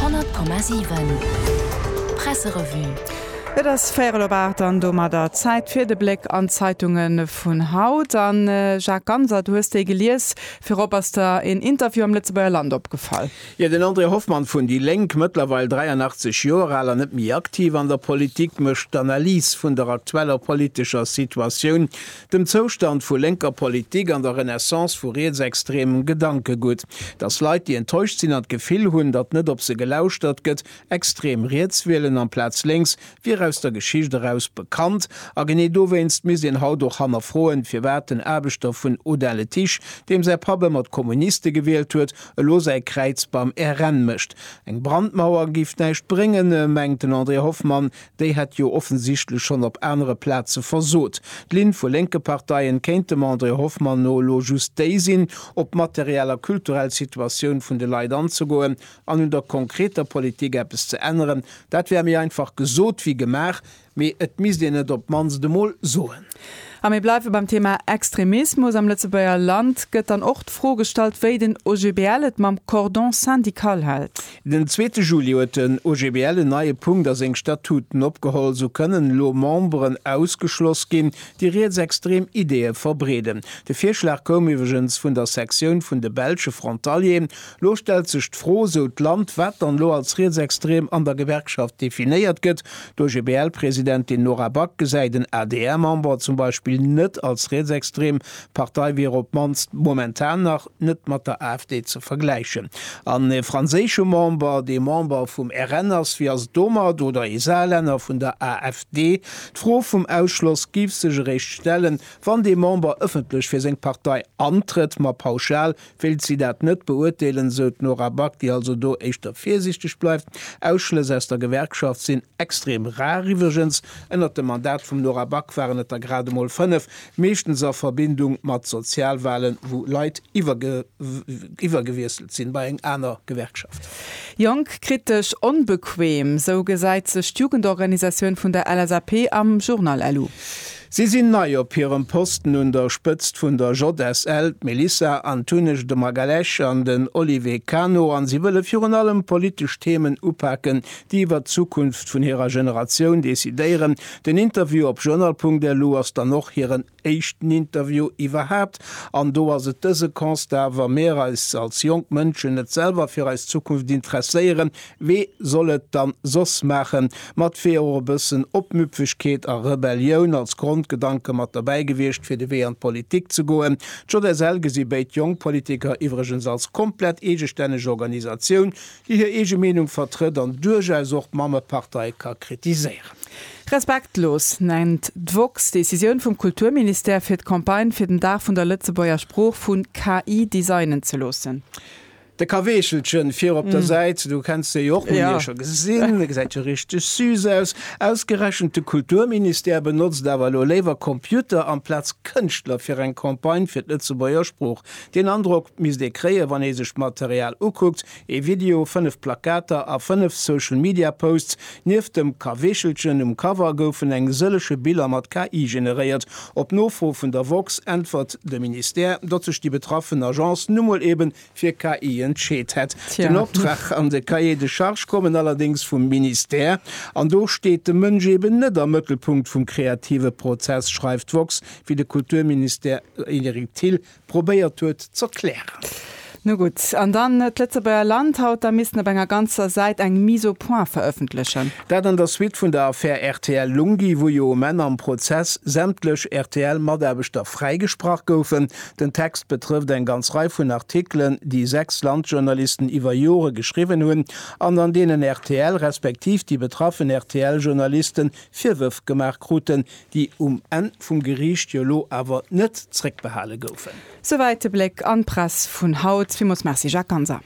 100,7 Presserevue. Et ass véierel op aacht an domadder Zäit fir de Bléck an d'Zeitunge vun haut. A Jacques Ganser, du hues déi gelies. Virop ass der een Interview am Lëtzebuerger Land opgefall. Jo, den André Hoffmann vun déi Lénk, mëttlerweil 83 Joer al a net méi aktiv an der Politik, mécht d'Analys vun der aktueller politescher Situatioun dem Zoustand vu lénker Politik an der Renaissance vu rietsextremem Gedankegutt, datt Leit, déi enttäuscht sinn an d'Gefill hunn, datt net op se gelauschtert gëtt, extrem riets wielen amplaz lénks, wier aus der Geschicht eraus bekannt. A genee dowéinst misst een haut och hannerfroen, firwat den Aarbechter vun Audun-le-Tiche, deem säi Papp ëmmer d'Kommuniste gewielt huet, elo säi Kräiz beim RN mécht. Eng Brandmauer géif näischt bréngen, mengt den André Hoffmann, Déi hätt jo offensichtlech schonn op anere Plaze versot. D'Linn vu lénke Parteien kéint dem André Hoffmann no elo just déi sinn, op d'materiell a kulturell Situatioun vun de Leit anzegoen an un der konkreter Politik eppes ze änneren. Dat wär méi einfach gesot wéi gemaach, mee et misst een et op d'mannst emol soen. A mir bleiwe beim Thema Extremismus. Am Lëtzebuerger Land gëtt dann och d'Fro gestallt, wéi den OGBL et mam Cordon syndical hält. Den zweete Juli huet den OGBL en neie Punkt a seng Statuten opgeholl. Sou kënnen elo Memberen ausgeschloss ginn, déi rietsextrem Ideeë verbreeden. De Virschlag koum iwwregens vun der Sektioun vun de belsche Frontalier. Lo stellt sech d'Fro, sou d'Land, wat dann elo als rietsextrem an der Gewerkschaft definéiert gëtt. D'OGBL-Presidentin Nora Back gesäit en adr-Member zum Beispill net als rietsextrem. D'Partei wier op d'mannst momentan nach. net mat der AfD ze vergläichen, an e franséische Member, dee Member vum RN ass, wéi ass et domat, oder ee Saarlänner vun der AfD? D'Fro vum Ausschloss géif sech eréischt stellen, wann dee Member ëffentlech fir seng Partei antrëtt. Ma pauschal wéilt si dat net beurteelen, esou d'Nora Back, déi also do éischter virsiichteg bleift. Ausschlëss aus der Gewerkschaft sinn extrem rar. Iwwregens, ënnert dem Mandat vum Nora Back waren et der grad emol fënnef. meeschtens a Verbindung mat Sozialwalen, wou Leit iwwergewiesselt sinn bei eng aner Gewerkschaft. Jonk, kritesch, onbequem, sou gesäit sech d'Jugendorganisatioun vun der LSAP am Journal LU. Si sinn nei op hirem Posten un der Spëtzt vun der JSL, d'Melissa Antunes de Magalhães an den Olivier Cano, a si wëlle virun allem politesch Themen upaken, déi iwwer d'Zukunft vun hirer Generatioun decidéieren. Den Interview op journal.lu ass dann och hiren éischten Interview iwwerhaapt. An do ass et dëse Constat, Wa mir eis als jonk Mënschen net selwer fir eis Zukunft interesséieren, wee soll et dann soss maachen? Mat wier och e bëssen Opmüpfegkeet a Rebellioun als Grondgedanke mat derbäi gewiescht, fir de Wee an d'Politik ze goen. D'JSL gesi béid Jongpolitiker iwwregens als komplett eegestänneg Organisatioun, déi hir eege Meenung vertrëtt an duerchaus och d'Mammepartei ka kritiséieren. Respektlos nennt d'woxx d'Decisioun vum Kulturministère, fir d'Campagne fir den Dag vun der Lëtzebuerger Sprooch vu KI designen ze loossen. De Kaweechelchen vir op der Säit, du kenns de jo och, mir hunn dee scho gesinn, e gesäit jo richteg süß aus. Ausgerechent de Kulturministère benotzt awer elo léiwer Computer amplaz Kënschtler fir eng Campagne fir d'Lëtzebuerger Sprooch Deen Androck misst ee kréien, wann ee sech d'Material ukuckt, ee Video, fënnef Plakater a fënnef Social Media Posts. Nieft dem Kaweechelchen um Cover goufen eng sëllege Biller mat KI generéiert. Op Nofro vun der woxx äntwert de Ministère, datt sech déi betraffen Agence nu mol ebe fir KI entscheet hätt. Den Optrag an de Cahier de charges kommen allerdéngs vum Ministère. An do steet de Mënsch eben net am Mëttelpunkt vum kreative Prozess, schreift woxx, wéi de Kulturminister Eric Thill probéiert huet z'erklären. Nu gutt, an dann d'Lëtzebuerger Land haut da missten op enger ganzer Säit eng Mise au point verëffentlechen. Dat an der Suite vun der Affär rtl Lunghi, wou jo um Enn am Prozess sämtlech RTL-Mataarbechter fräigesprach goufen. Den Text betrëfft eng ganz Rei vun Artikelen, déi sechs Landjournalisten iwwer Jore geschriwwen hunn an an deenen rtl respektiv déi betraffen RTL-Journalisten Virwërf gemaach kruten, déi um Enn vum Geriicht jo elo awer net zréckbehale goufen. Souwäit de Bléck an d'Press vun haut. Villmools Merci Jacques Ganser.